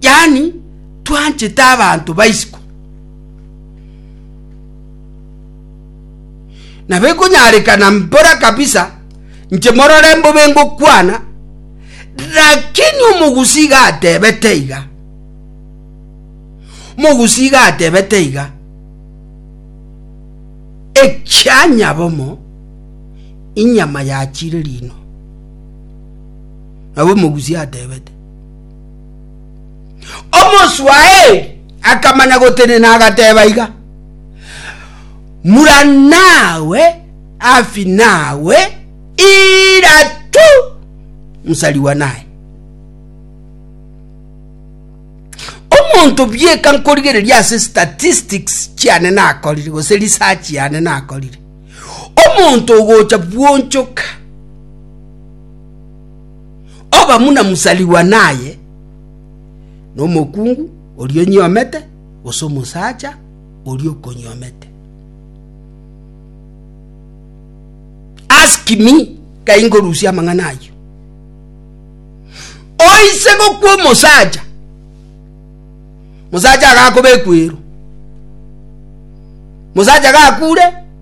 Yaani twanchete abanto ba isiko, na bekonyarekana mbora kabisa inche morore mbobe ngokwana, lakini omogusi iga atebete iga, omogusi iga atebete iga, ekia nyabomo inyama yachire rino. Nabo omogusi atebete. Omoswaeri akamanya gotenena agateba iga, Mura nawe afi nawe ira tu nsarigwa naye. Omonto bieka nkorigereria ase statistics chiane nakorire gose research yane nakorire. Omonto ogocha bwonchoka Obamuna mosarigwa naye nomokungu oria onyiomete, gose omosacha oria okonyiomete. Ask me kai ngorusia amang'ana ayio. Oise gokwa omosacha, mosacha agakobekwero, mosacha gakure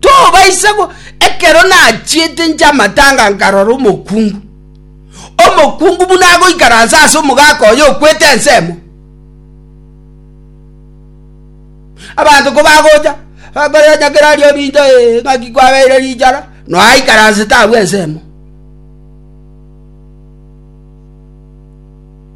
tobaisa go ekero nachiete inche amatanga nkarora omokungu omokungu buna agoikaransa ase omogaka oyo okwete ensemo abanto ko bagocha bakoria onye kera aria orinto ee ng'aki kwabeire richara noe aikaransete abwo ensemo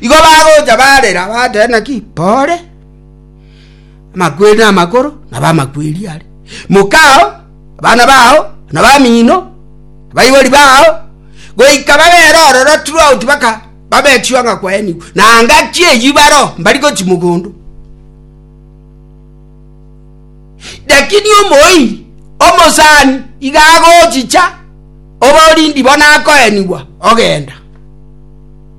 Igo bagocha barera, bateba, Naki pore, amakweri namakoro nabo amakweri are. Mokao, abana bao, na bamino, baibori bao, goika bagere ororo throughout baka babechwa ng'a kwaenigwe, na ngaki eyio baro mbari gochi mogondo. Lakini omoiri omosani iga agochicha oborindi bono akoenigwa ogenda.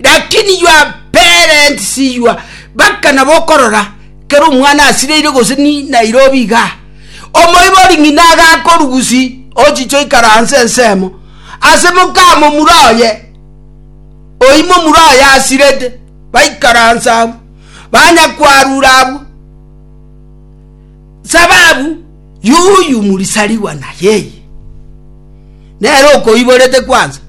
lakini your parents your baka nabo okorora kero omwana asireire gose ni nairobi iga omoibori ng'ina agakorugusi ochiche oikaranse ensemo ase mokamo mura oye oimo mura oye asirete baikaransa abu banya kwarura abu Sababu yuyu murisarigwa na yeye nere okoiborete kwansa.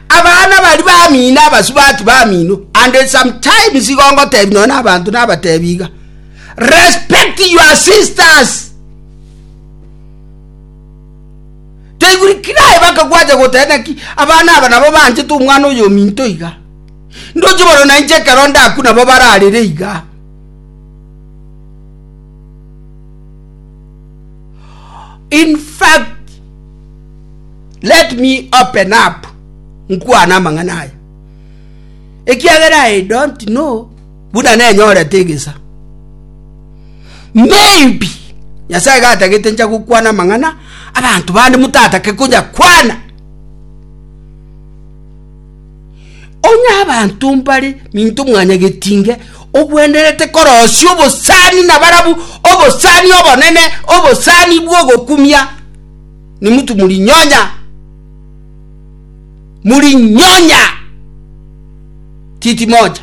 Abana bari bamino abasubati bamino and sometimes igongotebi nonya nabanto nabatebi iga respect your sisters taiguri kirae bakagwacha gotena ki abana aba nabo banchete omwana oyo ominto iga ndoche bono nainche ekero ndaku nabo bararire iga In fact, let me open up nkwane amang'ana aya, ekiagera I don't know buna nenyorete egesa. Maybe Nyasae gatagete ncha gokwana amang'ana abanto bande motatake konya kwana. Onye abanto mbare minto mwanyageti inge, ogwenerete korosia obosani na barabu obosani obonene, obosani bw'ogokumia, nimutu murinyonya. Murinyonya titimocha.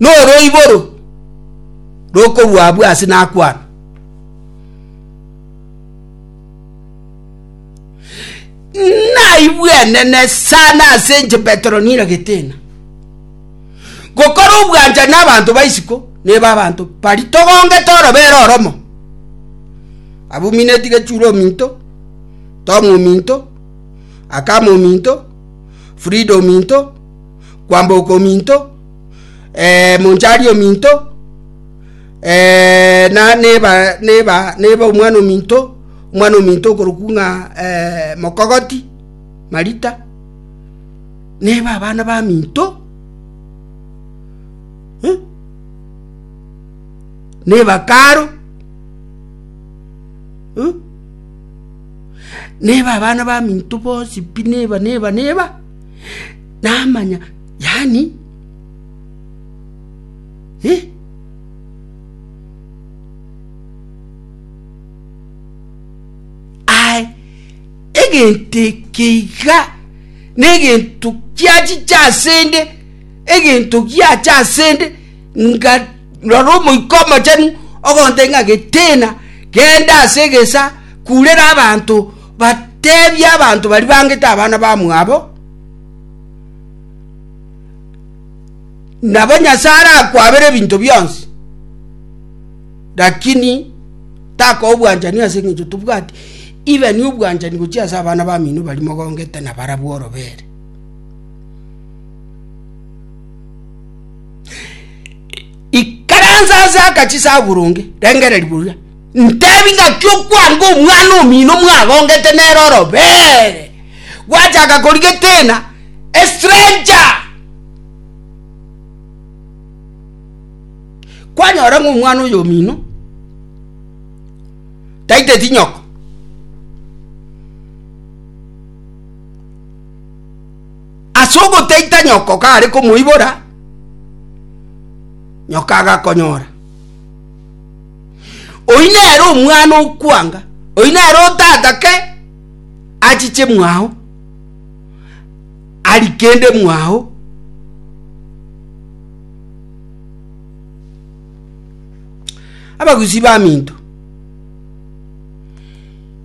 Noroiboro rokorwa abwo ase nakwana. Naigwe enene sana ase inche Petero niragete ng'a gokora obwanchani na abanto ba isiko neba abanto bari togongete orobere oromo. Abumineti gechura ominto, Tom ominto. Akama ominto, Frida ominto, Kwamboka ominto, eh, Monchari ominto, eh, na neba neba neba omwana ominto, omwana ominto okorokwa ng'a eh, Mokogoti, Marita. Neba abana baminto. Eh? Neba karo. Eh? neba abana baminto bonsi pi, neba, neba, neba, namanya yaani eh. Aye egento eke iga negento kiachiche asende, egento giacha asende. Nga rora Omoika Omochenu ogontebia ng'a getena, genda ase egesa, kurera abanto, batebie abanto baria bangete abana bamwabo, nabo Nyasae arakwabere ebinto bionsi, lakini takoa obwanchani ase eng'encho tobwati, even obwanchani gochia ase abana bamino baria mogongete nabarabwo orobere. Ikaransa ase akachi saburonge, rengereri boria. Ntebi ngaki okwanga omwana omino mwagongete nere orobere, gwachaka korigetena a stranger. Kwanyora ng'a omwana oyo omino taiteti nyoko. Ase ogotaita nyoko kare komoibora, nyoko agakonyora. Oyio nere omwana okwanga, oyio nere otatake achiche mwao, ari kende mwao. Abagusii baminto.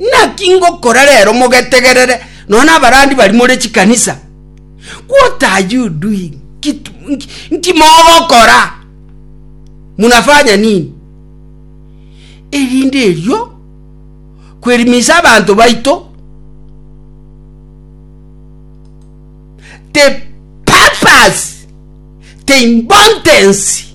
Naki ngokora rero mogetegerere, nonya nabarandi bari more chikanisa, what are you doing? Nki mogokora? Munafanya nini? Erinde erio kwerimisa abanto baito the purpose, the importance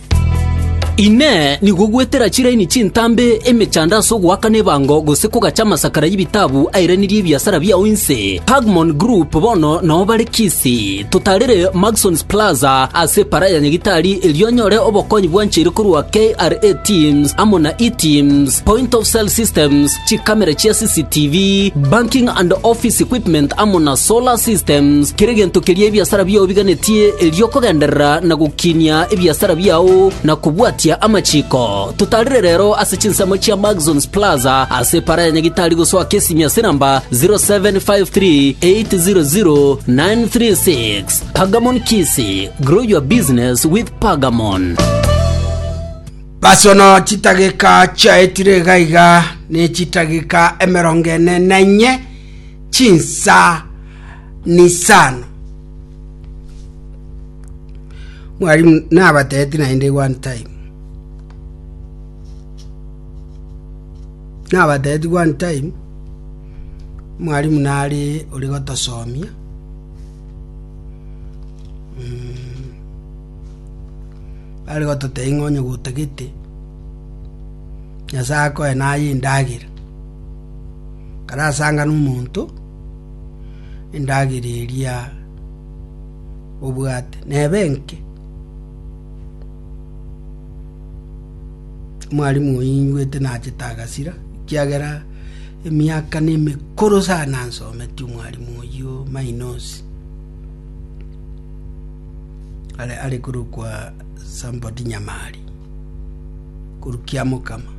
Inee! Nigo gwetera chiraini chintambe emechando ase ogoakana ebango gose kogacha amasakara y'ebitabu airanirie ebiasara biao inse? Pagmon Group bono nao bare Kisii. Totarire Maxons Plaza ase Epara ya Nyagitari erio onyore obokonyi bwancheire korwa KRA Teams amo na eTeams, Point of Sale Systems, chikamera chia CCTV, banking and office equipment amo na solar systems, kera egento keria ebiasara biao biganetie erio okogenderera na gokinia ebiasara biao na kobwatia amachiko. Totarire rero ase chinsemo chia Maxons Plaza ase epara ya Nyagitari gosoa Kesimi ase namba 0753800936. Pagamon Kisi, grow your business with Pagamon. Basono chitageka chiaetire iga iga nechitageka emerongo ene na inye, chinsa nisano. Mwalimu, nabateeti naende one time. Nabateeti one time, mwalimu nari ori gotosomia. Mm. Are gototebia ng'a onye gotagete, Nyasae akoe naye endagera. Kare asangane omonto, endagera eria obwate neba enke. Mwarimu oyio ingwete nachete agasira, ekiagera emiaka nemekoro sana nsometie omwarimu oyio mainosi. are are korwa kwa Sambodi Nyamari, korwa kiamokama.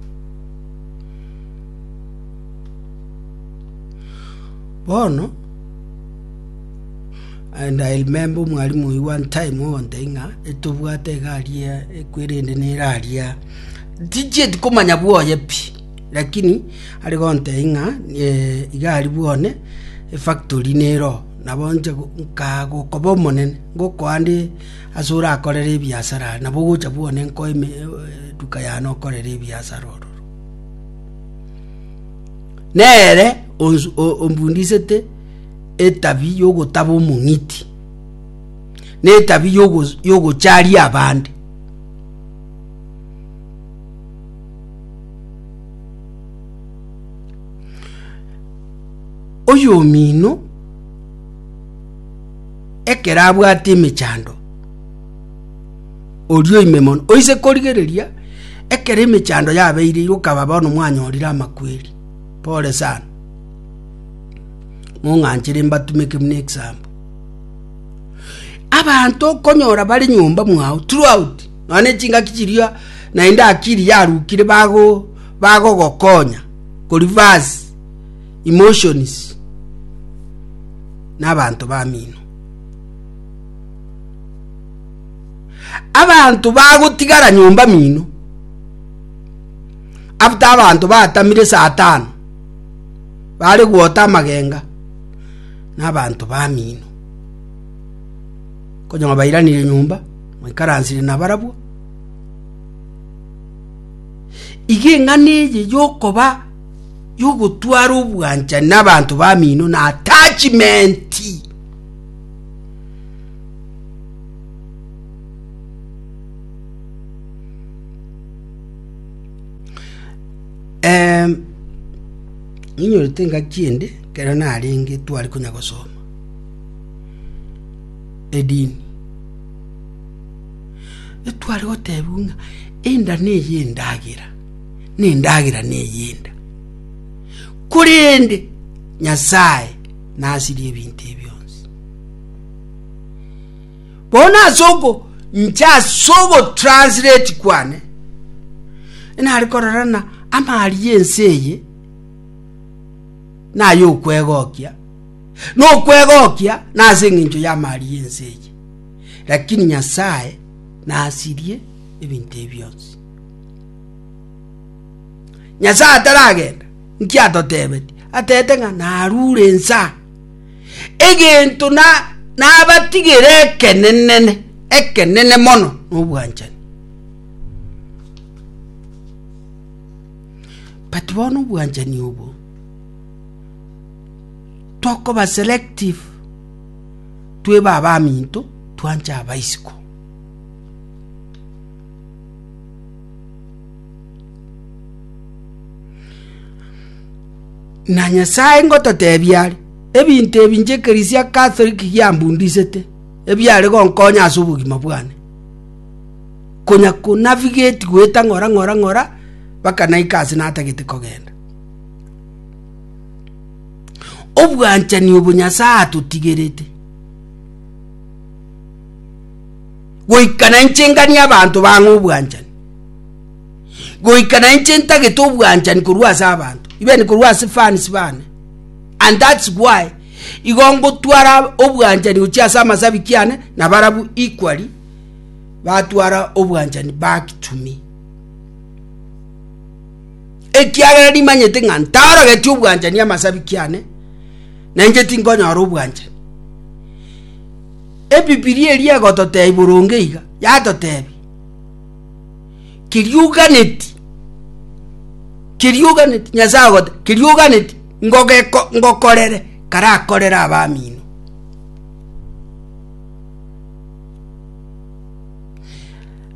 Bono and I remember omwalimu oyio one time ogotebia ng'a etobwate egari ya ekweri ende nerari ya tichieti komanya bwoye pi lakini are gotebia ng'a eh, igari bwane efactory nero Nabo inche nkaa gokoba omonene, ngokoa nde ase orakorere ebiasara are, nabo ogocha bwone nkoe eduka yane okorere ebiasara ororo. Nere ombundisete etabi y'ogotaba omong'iti, na etabi y'ogocharia abande. oyomino ekero abwate emechando, oria oime mono, oise korigereria ekero emechando yabeire iga okaba bono mwanyorire amakweri. Pole sana, mong'anchere mbatumeke buna example. Abanto okonyora bare nyomba mwago throughout nonya na echingaki chiria naende akili yarukire bago bagogokonya ko reverse. emotions n'abanto bamino abanto bagotigara nyomba mino after abanto batamire saa tano bare gwota amagenga n'abanto bamino konyama bairanire nyomba mwaikaransire nabarabwo iga eng'ana eye yokoba y'ogotwara obwanchani n'abanto bamino na attachmenti Em, ninyorete engaki ende kero narenge twari konya gosoma edini etware gotebiwa ng'a enda neye endagera nendagera ney'enda. Korende Nyasae nasirie ebinto ebi bionsi. Bono ase oko nche ase ogotranslate kwane nari kororana amari y'ense eye naye okwegokia nokwegokia nase eng'encho y'amari y'ense eye lakini Nyasae nasirie ebinto ebi bionsi. Nyasae ataragenda, nki atotebeti? Atete ng'a narure ensa. Egento na nabatigere ekenenene, ekenene mono nobwanchani. But bono obwanchani obo tokoba selective tweba abaminto twanche abaisiko Na Nyasae ngototebia are, ebinto ebi inche ekeresia ya Katholiki giambundisete, ebiare gonkonya ase obogima bwane. Konya konavigeti goeta ng'ora ng'ora ng'ora, mpaka naika ase natagete kogenda. Obwanchani obo Nyasae atotigerete. Goika nainche nganie abanto bang'e obwanchani, goika nainche ntagete obwanchani korwa ase abanto, even korwa ase fans bane. And that's why igo ngotwara obwanchani gochia ase amasabiki ane na barabu equally batwara obwanchani back to me. Ekiagera nimanyete ng'a ntarogeti obwanchani amasabiki ane, nainche tinkonyora obwanchani. Ebibilia eria egototeebia boronge iga, yatoteebia, Kerioganeti, kerioganeti, Nyasae ogote, kerioganeti, ngogeko, ngokorere karakorere abamino.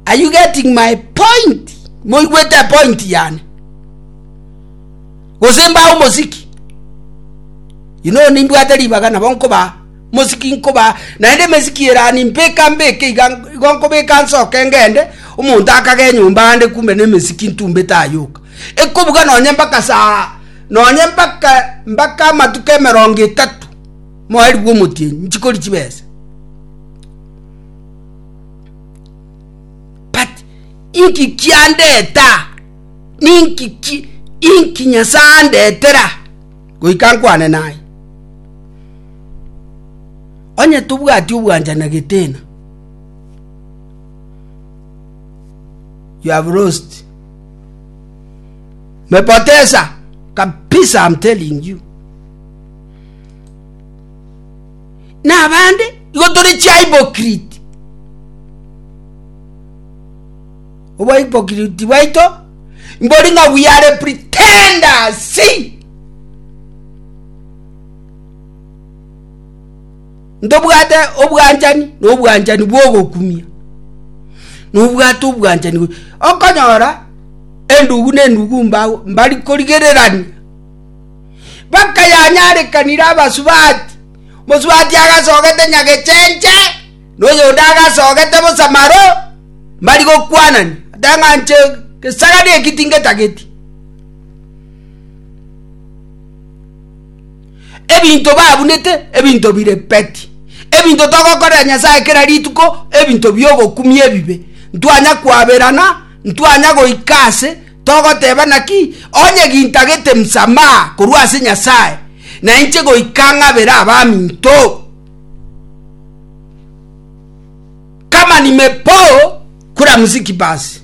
Are you getting my point? Moigwete point yane. Gose mbae omosiki. You know nimbwate ribaga nabo nkoba Mosiki nkobaa, naende emesiki erani mbeka mbeke iga, igo nkobeka nsoke ngende, omonto akaga enyomba aande kume nemesiki ntumbe tayoka. Ekobuga nonye mbaka saa, nonye mbaka mbaka amatuko emerongo etato, moeri bw'omotienyi, nchikori chibesa. But inki kiandeta, ninki ki, inki Nyasaye andetera, goika nkwane naye. Onye tobwati obwancha na getena, you have lost. Mepoteza kabisa, I'm telling you. Na abande igo tore chihypocrite. Obwa hypocrite bwaito mbori ng'a we are pretenders. See? Ntobwate obwanchani na obwanchani bw'ogokumia, na obwate obwanchani bwe- Okonyora endugu na endugu mbao mbari korigererania. Baka yanyarekanire abasubati, mosubati agasogete nyagechenche, na oyonde agasogete bosa maro, mbari gokwanani, ata ng'a nche gesagani eki tingetageti. Ebinto babunete, ebinto bire peti. Ebinto togokorera Nyasae kera rituko, ebinto bi'ogokumia ebibe. Ntwanya kwaberana, ntwanya goika ase, togoteba naki, onye gintagete msamaha korwa ase Nyasae, nainche goika ng'abere abaminto. Kama nimepoo kula mziki basi.